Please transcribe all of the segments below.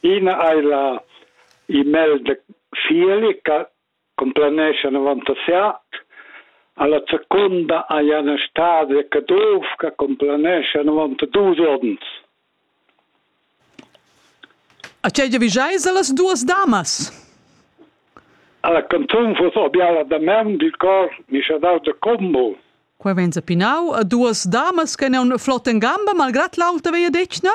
Ina ei la e-mail de Fieli che complanescha 97 alla seconda ei Anna Stade Caduff che complanescha 92 onns. A tgei giavischeis allas duas damas? Alla canzun fuss obiala da men dil cor mischadau de combo. Qua vegn pinau a duas damas che neun flotten gamba malgrat l'auta veia detgna?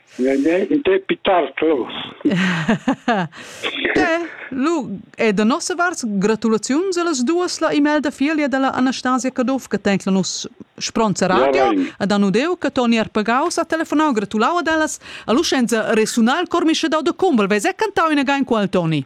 In te pitar clos. Lu è da nossa vart gratulaziuns a las duas la email da figlia della Anastasia Caduff che tenc la nus spronza radio ad anudeu che Toni Arpagaus ha telefonau gratulau ad ellas a luscenza resunal cormische da de Kumbel vez è cantau in again qual Toni.